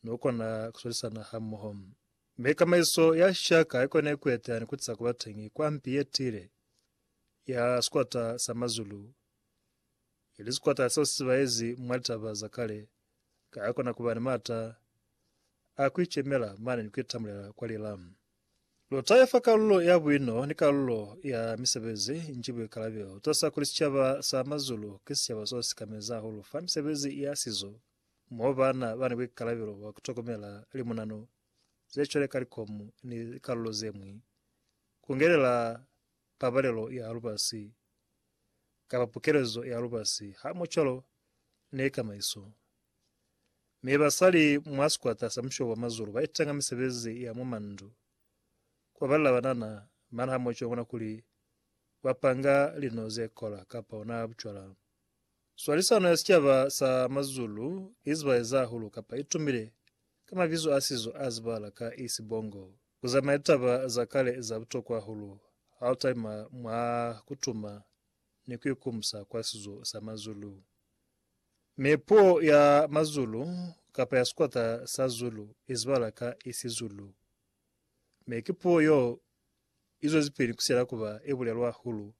Mi u kona ku swalisana hamoho. Mi kamaiso ya shaka i kone ku eteha ni ku tisa ku ba teñi kwa mpi ye tiile ya sikwata sa mazulu, ili sikwata seo si zibaezi mwa litaba za kale, ka ya kona ku ba ni maata a ku icemela mane ni ku itamulela kwa lila. Luta ifa kalulo ya buino ni kalulo ya misebezi nji buikalabelo. Tosa kuli sicaba sa mazulu ki sicaba so si kamezi hahulu fa misebezi ya sizo Mo baana ba ni buikalabelo bwa ku tokomela limunano ze cwale ka likomu ni likalulo ze ñwi, ku ngelela pabalelo ya lubasi kapa pukelezo ya lubasi hamucwalo ni kamaiso. Mi basali mwa sikwata sa Mushobo wa Mazulu ba itanga misebezi ya mwa mandu, ku babalela banana mana hamucwalo mwa kuli ba panga lino ze kola kapa ona bucwala. Swalisano ya sicaba sa Mazulu i zibaeza hahulu kapa i tumile ka mabizo a sizo a zibahala ka Isibongo. Ku zamaya litaba za kale za butokwa hahulu ha u talima mwa ku tuma ni ku ikumusa kwa sizo sa Mazulu. Mi puo ya Mazulu kapa ya sikwata sa Zulu i zibahala ka Isizulu, mi ki puo y'o izwezipili kusela kuba yebulelwa hahulu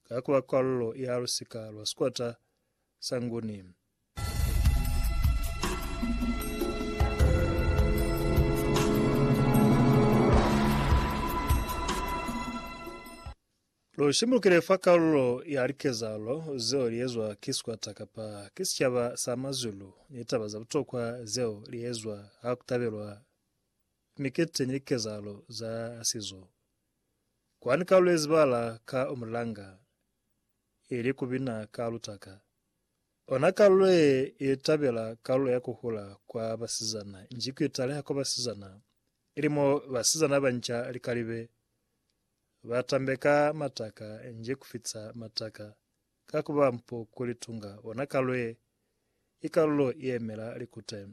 ka kuba kwallo ya lusika lwa sikwata sa Nguni. Lu shimbulukile fa kalulo ya likezalo zeo liezwa ki sikwata kapa ki sicaba sa mazulu ni taba za butokwa zeo liezwa ha kutabelwa Ni keteni likezahalo za sizo kwa ni kalulezi bala ka umulanga, ili ku bina ka lutaka. Ona kalulo ye ili tabela kalulo ya ku hula kwa basizana nji ku italeha kwa basizana, ili mo basizana banca likalibe ba tambeka mataka nji ku fitisa mataka ka ku ba mpo ku litunga. Ona kalulo ye ikalulo i emela likute.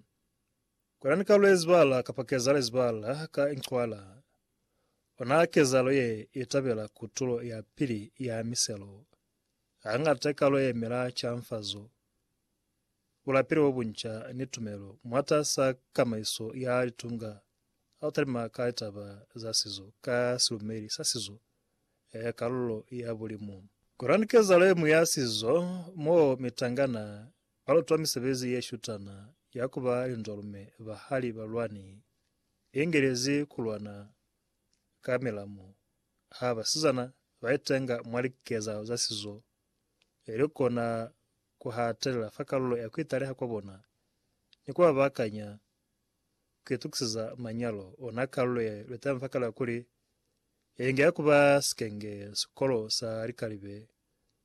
Kolani ka lwezibala kapa keza lezibala ka incwala. Ona kezalo ye itabela kutulo ya pili ya miselo. Hangata ikalo ye emela canfazo, bulapeli bobunca, ni tumelo mwatas'a kamaiso ya litunga ha u talima ka litaba za sizo ka silumeli sa sizo ya kalulo ya bulimu. Kolani kezalo ye ñwi ya sizo mo mitangana Balutwa misebezi ye shutana ya ku ba linzwalume ba hali balwani i ingelezi ku lwana ka milamu ha basizana ba itenga mwa likezahalo za sizo e li kona ku hatelela fa kalulo ya ku italeha kwa bona ni ku ba baakanya ku itukiseza manyalo ona. Kalulo ye luteni fa kale ya kuli ye inge ya ku ba sikenge sikolo sa likalibe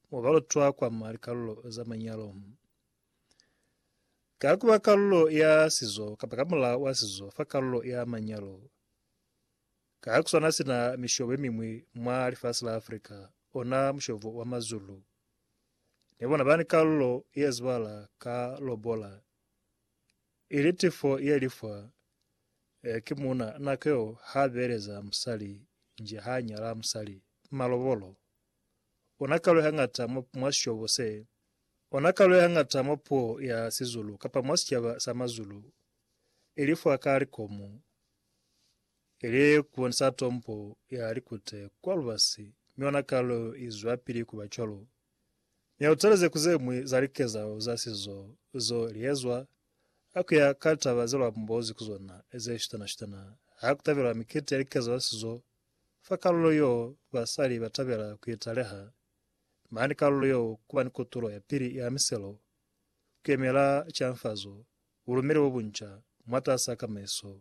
mo ba lutwa kwa mwa likalulo za manyalo. Ka ku ba kalulo ya sizo kapa ka mulao wa sizo fa kalulo ya manyalo, ka ku swana sina mishobo ye miñwi mwa lifasi la Afrika, ona mushobo wa Mazulu ne bona ba ni kalulo ye zibala ka lobola, ili tifo ye li fwa eh, ki muuna nako yeo ha beleza musali nje ha nyala musali, malobolo. Ona kalo ya ngata mwa, mwa syobo se. Ona kalo ya ngata mwa puo ya Sizulu, kapa mwa sicaba sa Mazulu, ili fwa ka likomu, ili ku bonisa tombo ya likute kwa lubasi, mi ona kalo i zwapili ku ba cwalo. Mi ha u taleze ku ze ñwi za likezahalo za sizo zeo li ezwa, ha ku ya ka litaba ze lu ambozi ku zona, ze shutana-shutana, ha ku tabelwa mikiti ya likezahalo za sizo, Fa kalulo yo, basali ba tabela ku italeha, mane kalulo yo kuba ni kotulo ya pili ya miselo, ku yemela canfazo, bulumeli bo bunca mwatas'a kamaiso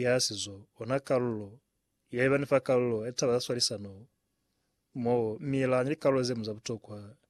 ya sizo, ona kalulo ya ibani fa kalulo ya litaba za swalisano, mo mi la ni likalulo ze ñwi za butokwa